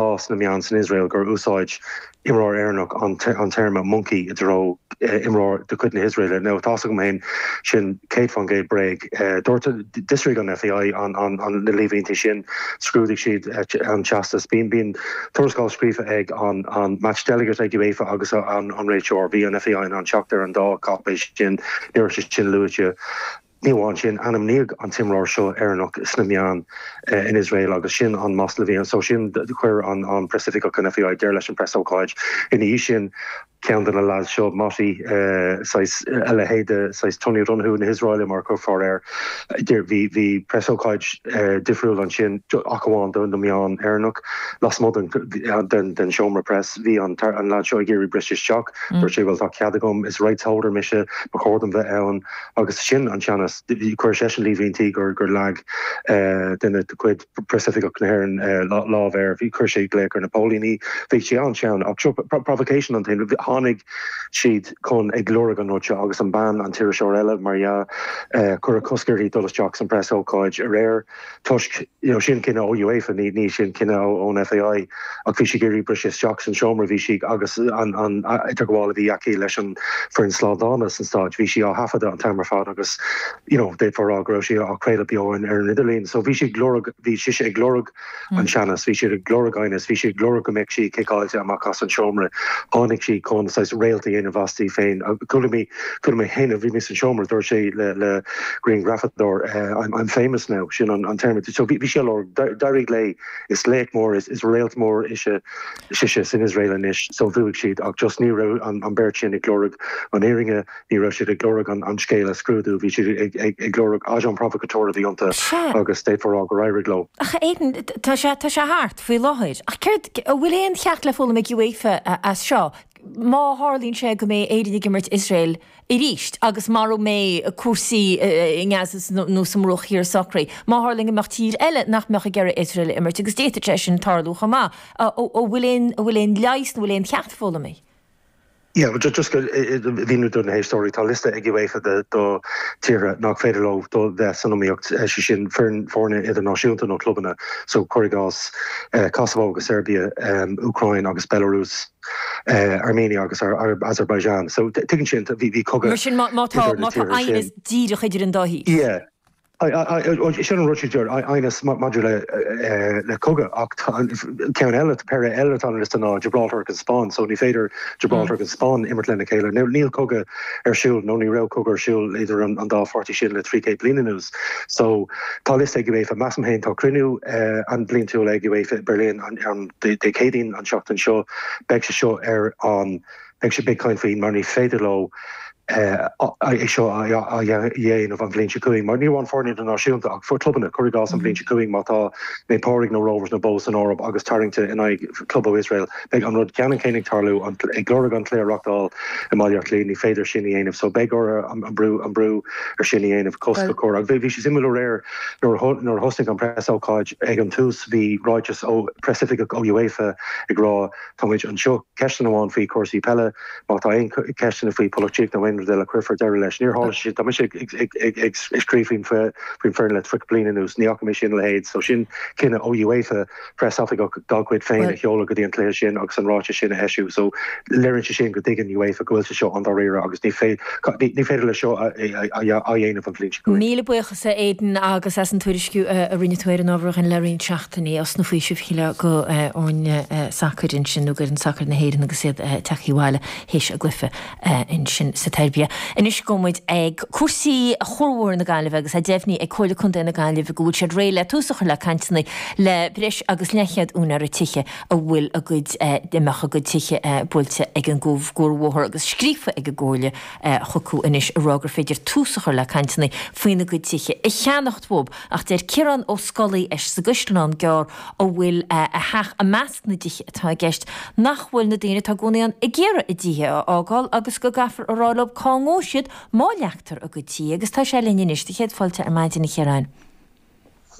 sna meáin san Iosrael gur úsáid imreoir Éireannach an téarma 'monkey' i dtreo imreoir de chuid na hIosraeile. Now tá's agam féin, sin 100 fán gcéad bréag. Dúirt, d'fhiosraigh an FAI na líomhaintí sin, scrúdaigh siad an teastas. Bíonn tuarascáil scríofa ag an match delegate ag UEFA agus an réiteoir. Bhí an FAI in ann teacht ar an dá cáipéis sin, ní raibh sé sin luaite. Ní amháin sin, ainmníodh an t-imreoir seo Éireannach sna meáin in Iosrael agus sin an masla a bhí ann. Sin, chuir an preasoifigeach ón FAI, deireadh leis an preasócáid. Ina dhiaidh sin, ceann de na leaids seo, Moti, saghas, a leithéid de saghas Tony O'Donoghue na hIosraeile mar a déarfá, bhí preasócáid difriúil ansin, ach amháin do na meáin Éireannach. Lasmuigh den den seomra press, bhí an leaid seo ag iarraidh briseadh isteach. Dúirt sé, bhuel, tá cead agam, is rights holder mise, ba chóir dom bheith ann. Agus sin an teannas. Chuir seisean líomhaintí gur leag duine de chuid preasoifigeach na hÉireann lámh air, bhí, chuir sé glaoch ar na póilíní, bhí sé an-teann. Ach seo, provocation an t-ainm, tháinig siad chun ag lorg an rud seo agus an bean, an t-iriseoir eile, mar dhea, cuireadh cosc uirthi dul isteach san preasócáid aréir. toisc, you know, sin cinneadh ó UEFA, ní, ní sin cinneadh ó, ón FAI ach bhí siad ag iarraidh briseadh isteach san seomra, bhí siad, agus an, an idirghabháil a bhí aici leis an foireann slándála san stáid, bhí sí á thaifeadadh an t-am ar fad agus, you know, d'fhéadfá a rá go raibh sí á craoladh beo ar, ar an idirlíon. So bhí sí ag lorg, bhí sise ag lorg an teannas, bhí siad ag lorg aighneas, bhí siad ag lorg go mbeadh sí ciceáilte amach as an seomra. Tháinig sí chun saghas réalt a dhéanamh asti féin. Chuala mé. Chuala mé féin, bhí mé sa seomra, dúirt sí le grianghrafadóir, I'm famous now, sin an téarma, so bhí sí ag lorg, d'éirigh léi, is laoch mór, is réalt mór ise, sise, san Iosrael anois, so bhuaigh siad, ach just ní raibh an beirt sin ag lorg an fhírinne, ní raibh siad ag lorg an scéal a scrúdú, bhí siad ag lorg agent provocateur a bhí iontu agus d'fhéadfá a rá gur éirigh leo. Ach Aidan, tá sé thart faoi láthair, ach céard, an bhfuil aon cheacht le foghlaim ag UEFA as seo? Má tharlaíonn sé go mbeidh Éirinn ag imirt Iosrael arís agus mara mbeidh cúrsaí i nGaza nó sa mBruach Thiar socraithe. Má tharlaíonn go mbeadh tír eile nach mbeadh ag iarraidh Iosrael a imirt, agus d'fhéadfadh sé sin tarlú chomh maith, an bhfuil aon an bhfuil aon leigheas nó bhfuil aon cheacht foghlamtha? Yeah, well just just a mhíniú do na héisteoirí, tá liosta ag UEFA de do tíortha nach féidir leo do bheith san iomaíocht, sé sin foireann foirne idirnáisiúnta nó clubanna, so cuir i gcás Kosovo agus Seirbia, Úcráin agus Belarus. Armenia agus Azerbaijan. So tuigeann sinn bhí cogadh. Mar sin má tá aighneas díreach idir an dá thír. Yeah. Sin an rud sin deir aighneas maidir le cogadh ach tá ceann eile, péire eile atá ar an liosta ná Gibraltar agus an Spáinn so ní féidir Gibraltar agus an Spáinn imirt lena chéile. Now níl cogadh ar siúl nó ní raibh cogadh ar siúl idir an dá pháirtí sin le trí céad bliain anuas. So tá liosta ag UEFA. Measaim féin tá cruinniú an bliantúil ag UEFA i Berlin. am, Dé Céadaoin an tseachtain seo, beidh sé seo ar an, beidh sé, beidh caint faoi mar ní féidir leo é seo a dhéanamh an bhliain seo chugainn mar ní amháin foirne idirnáisiúnta ach for clubanna, cuir i gcás an bhliain seo chugainn má tá Naomh Pádraig nó na Rovers nó Bohs san Eoraip agus tarraingte in aghaidh club ó Iosrael, beidh an rud ceannann céanna ag tarlú ag iarraidh an cluiche a reachtáil i mBaile Átha Cliath, ní féidir sin a dhéanamh so beidh orthu an brú ar sin a dhéanamh cosc a chur agus bhí sé suimiúil aréir, Nuair a thosaigh an preasócáid ag an tús bhí ráiteas ó preasoifigeach ó UEFA ag rá Tá muid anseo, ceisteanna amháin faoi chúrsaí peile, má tá aon cheisteanna faoi polaitíocht nó aon rud eile cuirfear deireadh leis. Níor tharla sé sin, tá mise ag scríobh faoin bhfoireann le 30 bliain anuas, ní fhaca mé sin a leithéid, so sin cinneadh ó UEFA. preasoifigeach dá gcuid féin a sheoladh go dtí an cluiche sin agus an ráiteas sin a eisiú so léirionn sé sin go dtuigeann UEFA go bhfuil sé seo an-dáiríre agus ní féidir leis seo a dhéanamh an bhliain seo chugainn. Míle buíochas a Aidan agus as an tuairisciú a rinne tú ar an ábhar dhúinn le roinnt seachtainí, osna faoisimh shílfeá, d'fhoirne sacair ansin nó d'fhoireann sacair na hÉireann agus iad ag teacht abhaile th'éis a gcluiche. ansin sa tSeirbia. Anois gabhfaidh muid ag cúrsaí chuarbhóthar na Gaillimhe agus tá deimhnithe ag Comhairle Contae na Gaillimhe go bhfuil siad réidh le tús a chur le cainteanna le breis agus leathchéad úinéara tithe a bhfuil a gcuid a mbeadh a gcuid tithe buailte ag an gcuarbhóthar agus tá scríofa ag an gComhairle chucu anois a rá gur féidir tús a chur le cainteanna faoina gcuid tithe a cheannacht uathu ach deir Ciarán Ó Scolaí sa gCaisleán Gearr a bhfuil a theach i na dtithe atá i gceist, nach bhfuil na daoine atá i gcónaí ann ag iarraidh a dtithe a fhágáil agus go gcaithfear a rá leo cá ngabhfaidh siad má leagtar a gcuid tithe, agus tá sé linn anois do chéad fáilte ar maidin, a Chiaráin.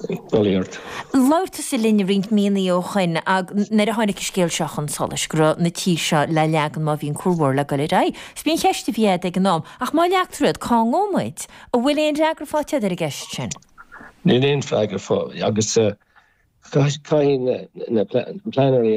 Bail ó Dhia ort. Labhair tusa linn roinnt míonnaí ó shoin nuair a tháinig an scéal seo chun solais, go raibh na tithe seo le leagan má bhíonn cuarbhóthar le dul ar aghaidh. Is b'in an cheist a bhí agat ag an am, ach má leagtar iad, cá ngabhfaidh muid? An bhfuil aon fhreagra fáighte agat ar an gceist sin? Níl aon freagra faighte agus caithfidh na pleanálaithe